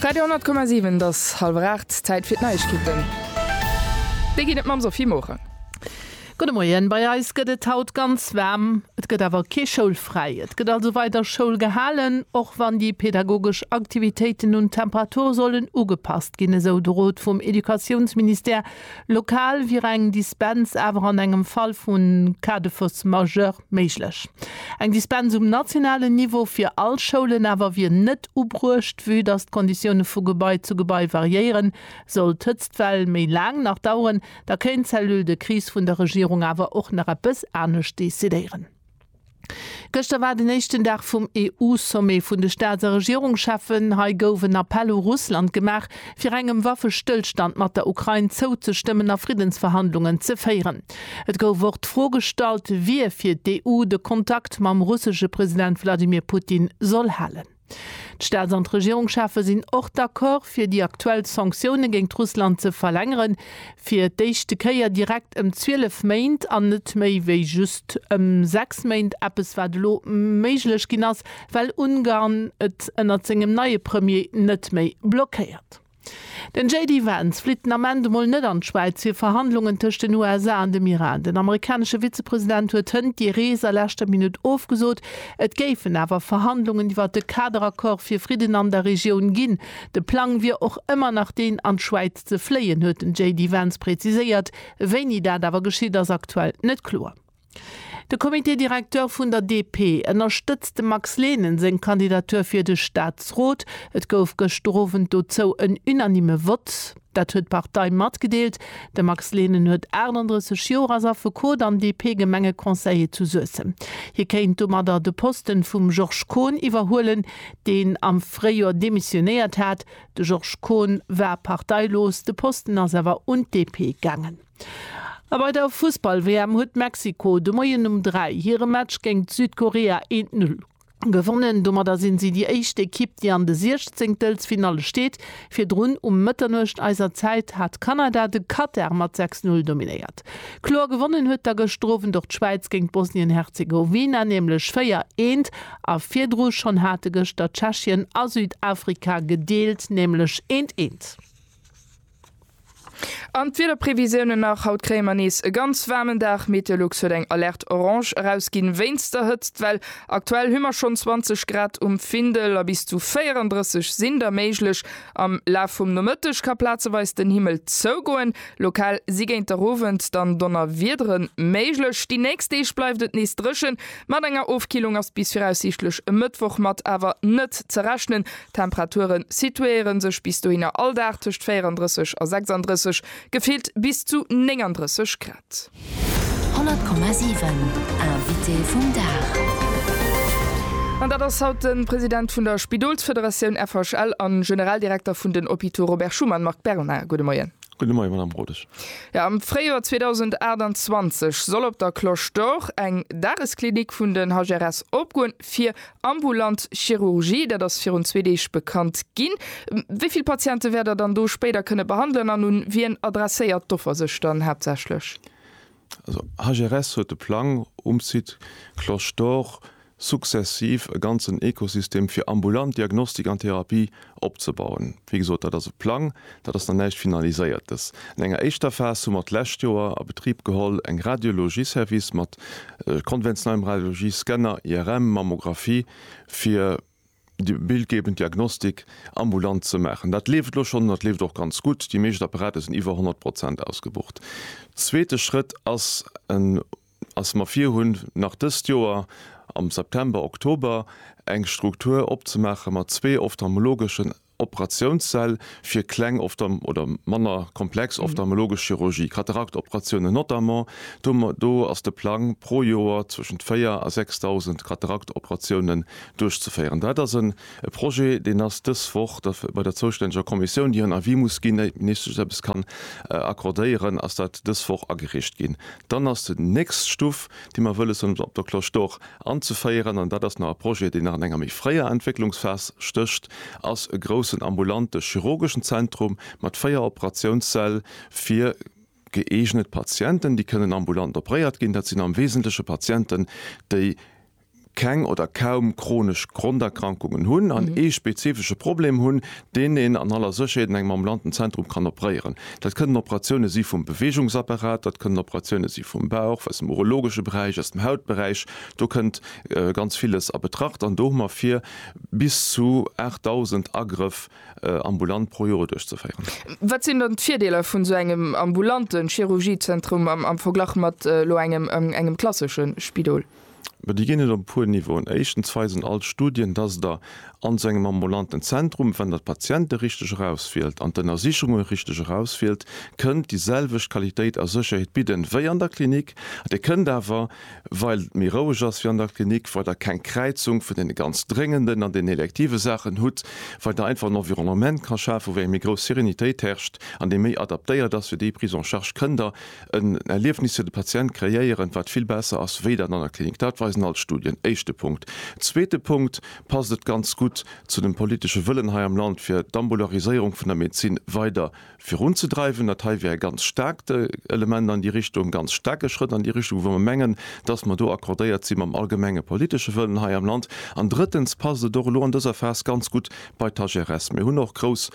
Radio 10,7 't ass halwer 8, Zäit fir d'Neiegkeeten. Déi ginn et mam Sophie Morang. Gudde Moien, Bei eis gëtt et haut ganz waarm, et gëtt awer kee Schoulfräi. Et gëtt also weider Schoul gehalen, och wann déi pedagogesch Aktivitéiten un d'Temperatur sollen ugepasst ginn, esou de Rot vum Educatiounsministère. Lokal wier eng Dispens awer an engem Fall vu Cas de force majeure Méiglech. Eng Dispens um nationalen Niveau fir all Schoulen awer wier net ubruecht, vue dass d'Konditioune vu Gebai zu Gebai variéieren. Sollt d'Hëtztwell méi laang nach daueren, da kéint d'Cellule de crise vun der Regierung awer och nach eppes anescht decidéieren. Gëschter war den éischten Dag vum EU-Sommet vun de Staats a Regierungscheffen. Hei gouf en Appell u Russland gemaach, fir engem Waffestëllstand mat der Ukrain zouzestëmmen a Friddensverhandlungen ze féieren. Et gouf och d'Fro gestallt, wie fir d'EU de Kontakt mam russesche President Wladimir Putin soll halen. D'Staats an d'Regierungschefe sinn och d'Accord, fir déi aktuell Sanktioune géint Russland ze verlängeren, fir d'éischte Kéier direkt ëm 12 Méint an net méi wéi just ëm 6 Méint, eppes wat elo méiglech ginn ass, well Ungarn et ënnert sengem neie Premier net méi blockéiert. Den JD Vance flitt den Ament emol net an d'Schwäiz fir Verhandlungen tëscht den USA an dem Iran. Den amerikanesche Vizepresident huet hënt déi Rees a leschter Minutt ofgesot. Et géifen awer Verhandlungen iwwer de Kaderaccord fir Fridden an der Regioun ginn. De Plang wier och ëmmer nach deen an d'Schwäiz ze fléien, huet den JD Vance präziséiert. Wéini dat awer geschitt, ass aktuell net kloer. De Comité directeur vun der DP ënnerstëtzt dem Max Lehnen seng Kandidatur fir de Staatsrot. Et gouf gëschter Owend dozou en unanime Vott. Dat huet d'Partei matgedeelt. De Max Lehnen huet 38 Joer, ass Affekot an DP-Gemengeconseiller zu Suessem. Hie kéint domadder de Posten vum Georges Kohn iwwerhuelen, deen am Fréijoer demissionéiert hat. De Georges Kohn war parteilos, de Posten ass awer un d'DP gaangen. A bei der Fussball-WM huet Mexiko de Moien um 3 hire Match géingt Südkorea eent Null gewonnen. Domadder sinn si déi éischt Ekipp, déi an de Siechzéngtelfsfinalle steet. Virdrun um Mëtternuecht eiser Zäit hat Kanada de Katar mat 6 Null dominéiert. Kloer gewonnen huet da gëschter Owend och d'Schwäiz géingt Bosnien-Herzegowina, nämlech 4 eent. A virdru schonn hate gëschter Tschechien a Südafrika gedeelt, nämlech eent eent. An d'Wiederprevisiounen nach, Haut kréie mer nees e ganz waarmen Dag. Meteolux huet eng Alerte Orange erausginn wéinst der Hëtztwell. Aktuell hu mer schonn 20 Grad um Findel a bis zu 34 sinn der méiglech. Am Laf vum Nomëtteg ka plazeweis den Himmel zougoen, lokal si géint der Owend dann Donnerwiedere méiglech. Déi nächst Deeg bleift et nees dréchen, mat enger Ofkillung ass bis viraussiichtlech e Mëttwoch mat awer net ze rechnen. D'Temperature situéiere sech bis dohinner all Dag tëscht 34 a 36, gefillt bis zu 39 Grad. 100,7 Invité vum Dag. An dat ass haut de President vun der Spidolsfederatioun FHL a Generaldirekter vun den Hôpitaux Robert Schuman, Marc Berna. Gudde Moien. Gudde Moien, Madamm Rodesch. Jo, am Fréijoer 2028 soll op der Cloche d'Or eng Dagesklinik vun den HGRS opgoen, fir Ambulant Chirurgie, dat ass virun zwee Deeg bekannt ginn. Wéi vill Patiente wäert Der dann do spéider kënne behandelen an un wien adresséiert d'Offer sech dann haaptsächlech? Also HRS huet de Plang, um Site Cloche d'Or sukzessiv e ganzen Ekosystem fir ambulant Diagnostik an Therapie opzebauen. Wéi gesot, dat ass e Plang, dat ass nach näischt Finaliséiertes. An enger éischter Phas hu mer d'lescht Joer a Betrib geholl eng Radiologie-Service mat konventionellem Radiologie, Scanner, IRM, Mammographie, fir déi bildgebend Diagnostik ambulant ze maachen. Dat leeft elo schonn an dat leeft och ganz gutt. Déi meescht Apparater sinn iwwer 100 Prozent ausgebucht. Zweete Schrëtt ass e ass mer virhunn, nach dëst Joer am September, Oktober eng Struktur opzemaache mat zwee ophtalmologeschen Operatiounssäll fir kleng oder manner komplex ophtalmologesch Chirurgie, Kataraktoperatiounen notamment. Do do ass de Plang, pro Joer zwëschent 4 a 6.000 Kataraktoperatiounen duerchzeféieren. Dat ass e Projet, deen ass dës Woch da bei der zoustänneger Kommissioun, déi hiren Avis muss ginn, ier d'Ministesch eppes kann accordéieren, ass dat dës Woch agereecht ginn. Dann ass déi nächst Stuff, déi mer wëlle soen, op der Cloche d'Or anzeféieren, an dat ass nach e Projet, deen nach an enger méi fréier Entwécklungsphas stécht, ass e groussen ambulante chirurgeschen Zentrum mat véier Operatiounssäll fir gëeegnet Patienten, déi kënnen ambulant operéiert ginn. Dat sinn am Wesentleche Patienten, déi keng oder kaum chronesch Gronderkrankungen hunn an ee spezifesche Problem hunn, deen een an aller Sécherheet an engem ambulanten Zentrum kann opréieren. Dat kënnen Operatioune si vum Beweegungsapparat, dat kënnen Operatioune si vum Bauch, aus dem urologesche Beräich, aus dem Hautberäich, do kënnt ganz villes a Betracht an do hu mer vir bis zu 8.000 Agrëff ambulant pro Joer duerchzeféieren. Wat sinn dann d'Virdeeler vun esou engem ambulante Chirurgiezentrum am Verglach mat elo engem klassesche Spidol? Ma déi ginn et op e puer Niveauen. Éischtens weisen all d'Studien, dass Der an esou engem ambulanten Zentrum, wann Der d'Patiente richteg erauswielt an d'Ënnersichunge richteg erauswielt, kënnt déi selwecht Qualitéit a Sécherheet bidden, wéi an der Klinik. Dir kënnt awer, well et méi roueg ass wéi an der Klinik, well Der keng Kräizung vun deene ganz dréngenden an deenen elektive Saachen hutt, well Der einfach en Environnement ka schafen, wou eng méi grouss Serenitéit herrscht an dee méi adaptéiert ass fir déi Prise en charge, kënnt Der, en Erliefnis fir de Patient kreéieren, wat vill besser ass wéi dat an der Klinik. Dat weisen all d'Studien. Éischte Punkt. Zweete Punkt, passt et ganz gutt zu dem politesche Wëllen hei am Land, fir d'Ambulariséierung vun der Medezin weider virunzedreiwen. Dat hei wär e ganz staarkt Element an déi Richtung, e ganz staarke Schrëtt an déi Richtung, wou mer mengen, dass mer do accordéiert si mam allgemenge politesche Wëllen hei am Land. An drëttens passt et och elo an dëser Phas ganz gutt bei d'HRS. Mir hunn och grouss.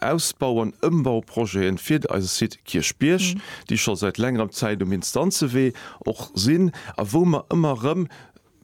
Ausbau an Ëmbauprojeten fir eise Site Kierchbierg, déi scho säit längerem Zäit um Instanzewee och sinn a wou mer ëmmer erëm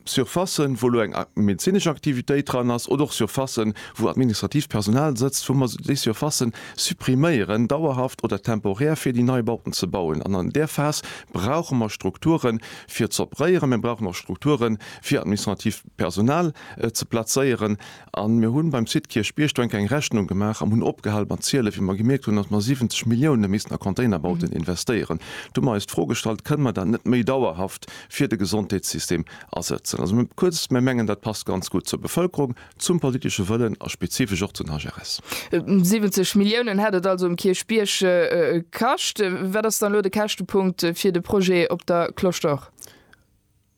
Surfacen, wou elo eng medezinesch Aktivitéit dran ass, oder och Surfacen, wou administratiivt Personal sëtzt, wou mer déi Surfacen suppriméieren, dauerhaft oder temporär, fir déi nei Bauten ze bauen. An an där Phas brauche mer Strukture fir z'opréieren. Mir brauchen och Strukture fir administratiivt Personal ze plazéieren. A mir hunn beim Site Kierchbierg-Duenker eng Rechnung gemaach an hunn opgehal mat zielen, wéi mer gemierkt hunn, datt mer 70 Milliounen missten a Containerbauten investéieren. Do hu mer eis d'Fro gestallt, Kënne mer dat net méi dauerhaft fir de Gesondheetssystem asëtzen? Also mir kuerz, mir mengen, dat passt ganz gutt zur Bevëlkerung, zum politesche Wëllen a spezifesch och zu den HRS. 70 Milliounen hätt et also um Kierchbierg kascht. Wat ass dann elo de Käschtepunkt fir de Projet op der Cloche d'Or?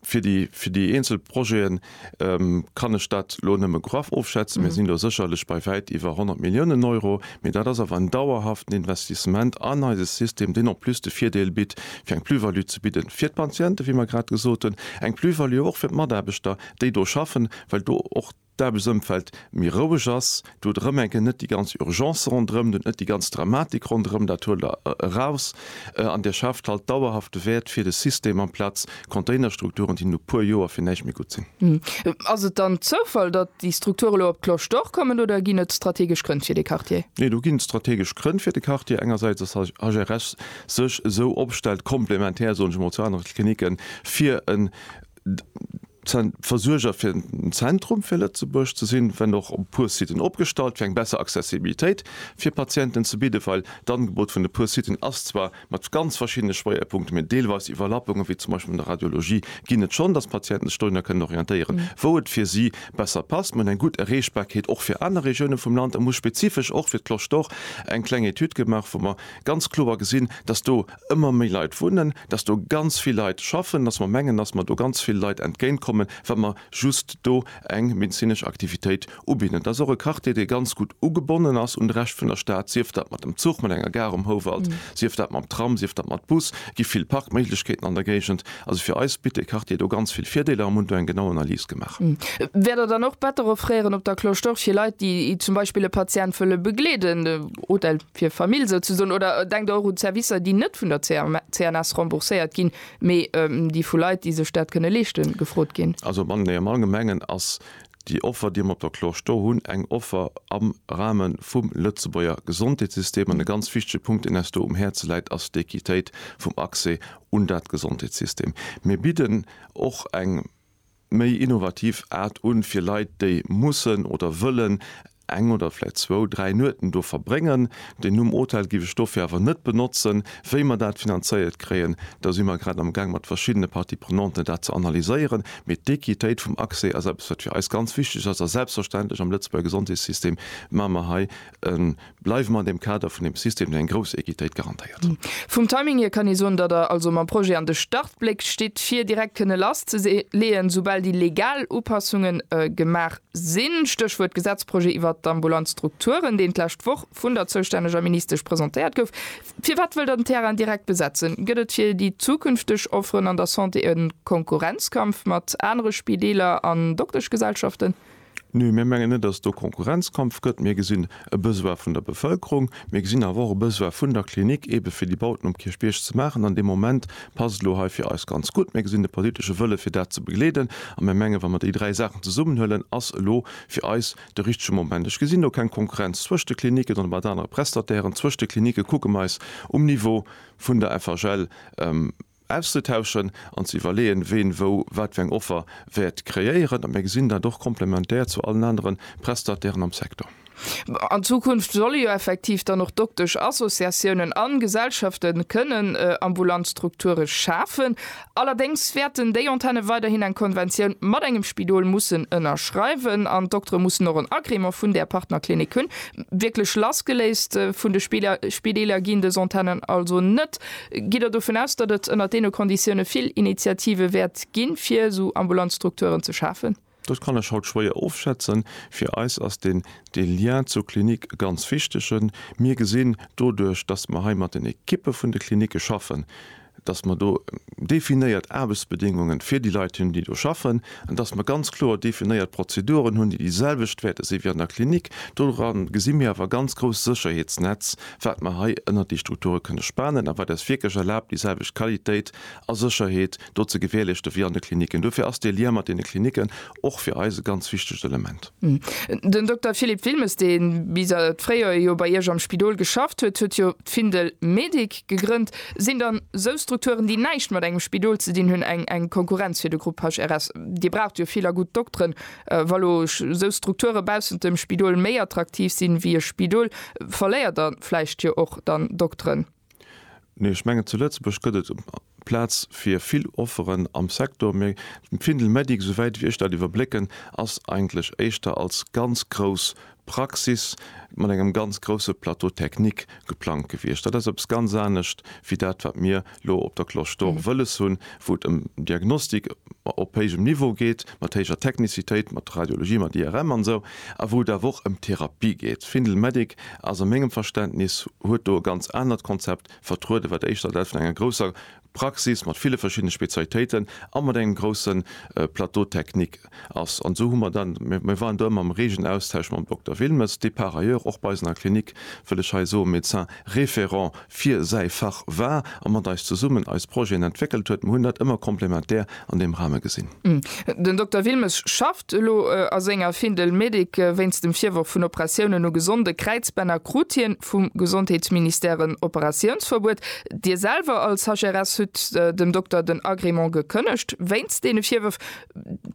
Fir déi, fir déi eenzel Projeten kann ech dat elo nëmme graff ofschätzen. Mir sinn elo sécherlech bei wäit iwwer 100 Milliounen Euro, mee dat ass awer en dauerhaften Investissement an eise System, deen en plus de Virdeel bitt, fir eng Plus-value ze bidden fir d'Patienten, wéi mer grad gesot hunn, eng Plus-value och fir d'Mataarbechter, déi do schaffen, well do och. d'Aarbechtsëmfeld méi roueg ass, du huet erëm eng Kéier net déi ganz Urgence ronderëm, du huet net déi ganz Dramatik ronderëm, dat huelt Der eraus an Dir schaaft halt dauerhafte Wäert fir de System amplaz Containerstrukturen, déi no e puer Joer fir näischt méi gutt sinn. Ass et dann Zoufall, datt déi Strukture elo op d'Cloche d'Or kommen oder ginn et strategesch Grënn fir dee Quartier? Nee, do ginn et strategesch Grënn fir de Quartier. Engersäits, dass d'HRS sech esou opstellt, komplementär, soen ech emol, zu anere Klinicken, fir en Versuerger fir den Zentrum fir Lëtzebuerg ze sinn, wenn och op e puer Siten opgestallt, fir eng besser Accessibilitéit fir Patienten ze bidden, well d'Angebot vun e puer Siten ass zwar mat ganz verschiddene Schwéierpunkten, mee deelweis Iwwerlappungen, wéi zum Beispill an der Radiologie, ginn et schonn, dass d'Patienten sech dohinner kënnen orientéieren, wou et fir si besser passt. Mir hunn eng gutt Erreechbarkeet och fir aner Regiounen vum Land a mir hu spezifesch och fir d'Cloche d'Or eng kleng Etüd gemaach, wou mer ganz kloer gesinn, dass do ëmmer méi Leit wunnen, dass do ganz vill Leit schaffen, dass mer mengen, dass mer do ganz ville Leit entgéintkommen, wa mer just do eng medezinesch Aktivitéit ubidden. Dat ass och e Quartier, dee ganz gutt ugebonnen ass un de Rescht vun der Stad, sief dat mat dem Zuch, mat enger Gare um Houwald, sief dat mam Tram, sief dat mat Bus, gi vill Parkméiglechkeeten an der Géigend. Also fir eis bitt dee Quartier do ganz vill Virdeeler a mer hunn do eng genau Analys gemaach. Wäert Der dann och Better offréieren op der Cloche d'Or fir Leit, déi zum Beispill e Patient wëlle begleeden? Odel. fir Famill souzesoen, oder denkt och un Servicer, déi net vun der CNS rembourséiert ginn, mee déi vu Leit, déi sech dat kënne leeschten, gefrot ginn. Also am Anglais, am Allgemengen ass déi Offer, déi mer op der Clore sto hunn, eng Offer am Rahme vum Lëtzebuerger Gesondheetssystem. An e ganz wichtege Punkt, deen eis do um Häerze läit, ass d'Equitéit vum Accès un dat Gesondheetssystem. Mir bidden och eng. méi innovativ Aart un, fir Leit, déi mussen oder wëllen eng oder vläicht zwou, dräi Nueten do verbréngen. Den Numm Hotel giff ech dofir awer net benotzen. Wéi mer dat finanzéiert kréien, do si mer grad am Gaang mat verschiddene Parties prenanten dat ze analyséieren. Mee d'Equitéit vum Accès ass eppes wat fir eis ganz wichteg ass a selbstverständlech am Lëtzebuerger Gesondheetssystem maache mer hei e Bleiwe mer an deem Kader vun deem System, deen eng grouss Equitéit garantéiert. Vum Timing hier kann ee soen, datt Der also mam Projet an de Startbléck stitt, fir direkt kënne lasszeleeën, esoubal déi legal Upassunge gemaach sinn. Stéchwuert Gesetzprojet iwwert d'ambulant Strukturen, deen d'lescht Woch vun der zoustänneger Ministesch presentéiert gouf. Firwat wëllt Der den Terrain direkt besetzen? Gëtt et fir déi zukünfteg Offeren an der Santé e Konkurrenzkampf mat anere Spideeler an Dokteschgesellschaften? Nee, mir mengen net, dass et do Konkurrenzkampf gëtt. Mir gesinn e Besoin vun der Bevëlkerung. Mir gesinn awer och e Besoin vun der Klinik, eebe fir déi Bauten um Kierchbierg ze maachen. An dee Moment passt et elo hei fir eis ganz gutt. Mir gesinn de politesche Wëlle fir dat ze begleeden. A mir mengen, wa mer déi dräi Saachen zesummenhuelen, ass elo fir eis de richtege Moment. Ech gesinn do keng Konkurrenz zwëscht de Klinicken oder mat anere Prestatairen. Zwëscht de Klinike kucke mer eis um Niveau vun der FHL ëm. auszetauschen an ze iwwerleeën, ween wou wat fir eng Offer wäert kreéieren. A mir gesinn dat och komplementär zu allen anere Prestatairen am Secteur. An Zukunft solle jo effektiv dann och Doktesch-Associatiounen a Gesellschafte kënnen ambulant Strukture schafen. Allerdéngs wäerten déi Antenne weiderhin eng Konventioun mat engem Spidol mussen ënnerschreiwen an d'Doktere mussen och en Agrément vun där Partnerklinik hunn. Wierklech lassgeléist vun de Spideeler ginn dës Antennen also net. Gitt Der dovun aus, datt et ënnert deene Konditioune vill Initiative wäert ginn, fir esou ambulant Strukturen ze schafen? Dat kann ech haut schwéier ofschätzen. Fir eis ass deen dee Lien zur Klinik e ganz wichtege. Mir gesinn, doduerch datt mer hei mat den Ekippe vun de Klinike schaffen, datt mer do definéiert Aarbechtsbedéngunge fir déi Leit hunn, déi do schaffen, an datt mer ganz kloer definéiert Prozeduren hunn, déi déi selwecht wäerte si wéi an der Klinik, doran gesi mir awer e ganz grousst Sécherheetsnetz, wat mer hei ënnert déi Strukture kënne spanen a wat eis wierklech erlaabt, déi selwecht Qualitéit a Sécherheet do ze gewährleechte wéi an de Klinicken. Dofir ass dee Lien mat deene Klinicken och fir eis e ganz wichtegt Element. Den Dokter Philippe Wilmes, dee bis an d'Fréijoer jo bei Iech am Spidol geschafft huet, huet jo d'Findel Medic gegrënnt. Sinn dann esou Strukturen, déi näischt mat engem Spidol ze dinn hunn, eng Konkurrenz fir de Grupp HRS? Dir braucht jo vill a gutt Dokteren. Wa lo esou Strukture baussent dem Spidol méi attraktiv sinn wéi e Spidol, verléiert der vläicht jo och dann Dokteren? Nee, ech mengen zu Lëtzebuerg gëtt et Plaz fir vill Offeren am Secteur, mee d'Findel Medic, esou wäit wéi ech dat iwwerblécken, ass eigentlech éischter als ganz grouss Praxis mat engem ganz grousse Plateau technique geplangt gewiescht. Dat ass eppes ganz anescht wéi dat, wat mir elo op der Cloche d'Or wëlles hunn, wou et ëm Diagnostik op héijem Niveau geet, mat héijer Technicitéit, mat Radiologie, mat IRM an esou, a wou et awer och ëm Therapie geet. Findel Medic ass a mengem Verständnis, huet do e ganz anert Konzept vertrueden, wat éischter dat vun enger grousser Praxis mat ville verschiddene Spezialitéiten a mat engem grousse Plateau technique ass. An esou hu mer dann, mir waren do ëmmer am reegen Austausch mam Dokter Wilmes, dee par ailleurs och bei eis an der Klinik, wëll ech hei soen, Médecin référent fir säi Fach war a mat eis zesummen eis Projeten entwéckelt huet. Mer hunn dat ëmmer komplementär an deem Rahme gesinn. Den Dokter Wilmes schafft elo a senger Fin de médic. Wéinst dem Virworf vun Operatiounen u gesonde Kräizbänner krut hien vum Gesondheetsministère en Operatiounsverbuet. Dir selwer als HRS hutt dem Dokter den Agrément gekënnegt wéinst deene Virwërf.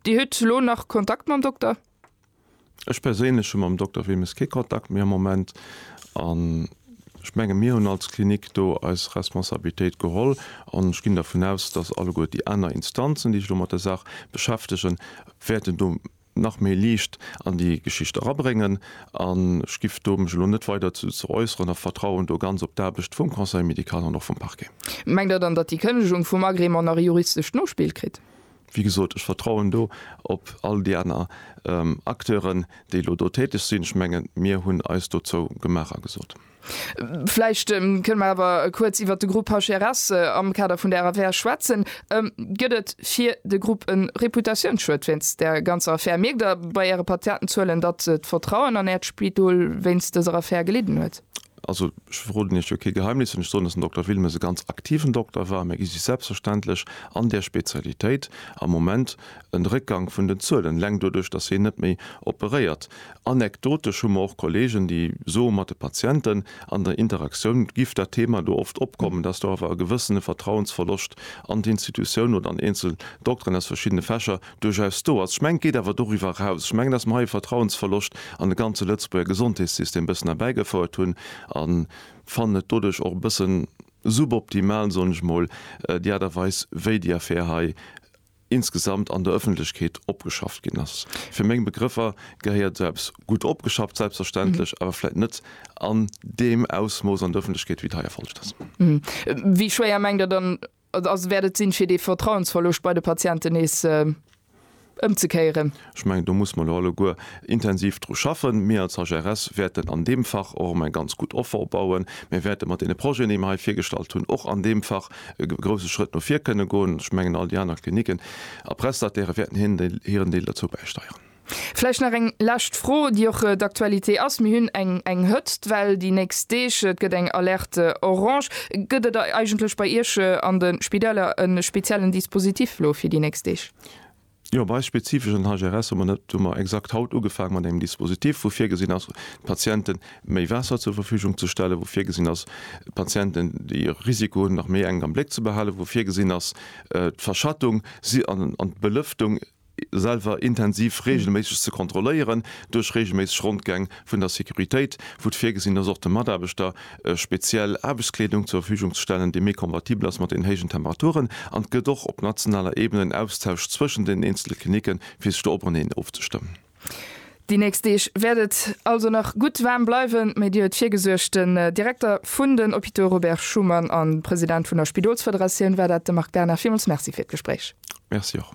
Dir hutt elo nach Kontakt mam Dokter? Ech perséinlech hu mam Dokter Wemmes kee Kontakt méi am Moment an ech menge mir hunn als Klinik do eis Responsabilitéit geholl an ech ginn dervun aus, datt alleguer déi aner Instanzen, déi sech elo mat der Saach beschäftegen, wäerten do nach méi Liicht an déi Geschicht erabréngen an ech giff do mech elo net weider dozou äusseren a vertrauen do ganz op d'Aarbecht vum Conseil médical an och vum Parquet. Mengt Der dann, datt déi Kënnegung vum Agrément nach e juristescht Nospill kritt? Wéi gesot, ech vertrauen do op all déi aner Acteuren, déi elo do täteg sinn. Ech mengen, mir hunn eis dozou gemaach a gesot. Vläicht kënne mer awer kuerz iwwert de Grupp HRS am Kader vun der Affär schwätzen. Gëtt et fir de Grupp e Reputatiounsschued wéinst där ganzer Affär? Mierkt Der bei Äre Patientenzuelen, datt d'Vertrauen an Äert Spidol wéinst dëser Affär gelidden huet? Also, ech verroden Iech jo kee Geheimnis, wann ech soen, dass den Dokter Wilmes e ganz aktiven Dokter war. Mir gi sech selbstverständlech an där Spezialitéit am Moment en Réckgang vun den Zuelen, eleng doduerch, dass hien net méi operéiert. Anekdotesch hu mer och Kollegen, déi soe mat de Patienten an der Interaktioun giff dat Thema do oft opkommen, dass do awer e gewëssene Vertrauensverloscht an d'Institutioun oder an eenzel Dokteren aus verschiddene Fächer duerchaus do ass. Ech mengen, et geet awer doriwwer eraus. Ech mengen, dass mer hei e Vertrauensverloscht an de ganze Lëtzebuerger Gesondheetssystem e bëssen erbäigefouert hunn a fannen et doduerch och e bëssen suboptimal, soen ech mol, déi Aart a Weis, wéi déi Affär hei insgesamt an der Öffentlechkeet opgeschafft ginn ass. Fir meng Begrëffer gehéiert esou eppes gutt opgeschafft, selbstverständlech, awer vläicht net an deem Ausmooss an der Öffentlechkeet, wéi et hei erfollegt ass. Wéi schwéier mengt Der dann, Also wäert et sinn, fir dee Vertrauensverloscht bei de Patienten nees ëmzekéieren? Ech mengen, do musse mer elo alleguer intensiv dru schaffen. Mir als HRS wäerten an deem Fach och erëm eng ganz gutt Offer opbauen. Mir wäerte mat deene Projeten, déi mer hei virgestallt hunn, och an deem Fach e grouse Schrëtt no vir kënne goen. Ech mengen, all déi aner Klinicken a Prestatairë wäerten hiren Deel dozou bäisteieren. Vläicht nach eng lescht Fro, déi och d'Aktualité ass. Mir hunn eng eng Hëtztwell déi nächst Deeg. Et gëtt eng Alerte orange. Gëtt et eigentlech bei Iech an de Spidäler e speziellen Dispositif elo fir déi nächst Deeg? Jo, bei eis spezifesch an der HGRS hu mer net, hu mer exakt haut ugefaange mat engem Dispositif, wou virgesinn ass, d'Patienten méi Waasser zur Verfügung ze stellen, wou virgesinn ass, d'Patienten, déi e Risiko hunn, nach méi enk am Bléck ze behalen, wou virgesinn ass, d'Verschattung an d'Belëftung, selwer intensiv reegelméisseg ze kontrolléieren, duerch reegelméisseg Rondgäng vun der Securitéit, wou et virgesinn ass och de Mataarbechter speziell Aarbechtskleedung zur Verfügung ze stellen, déi méi kompatibel ass mat den héijen Temperaturen. An et gëtt och op nationaler Ebene en Austausch zwëschen den eenzele Klinicken, fir sech do openeen ofzestëmmen. Déi nächst Deeg wäert et also nach gutt waarm bleiwen, méi Dier huet virgesuergt. Den Direkter vun den Hôpitaux Robert Schuman a President vun der Spidolsfederatioun war dat, de Marc Berna. Villmools Merci fir d'Gespréich. Merci och.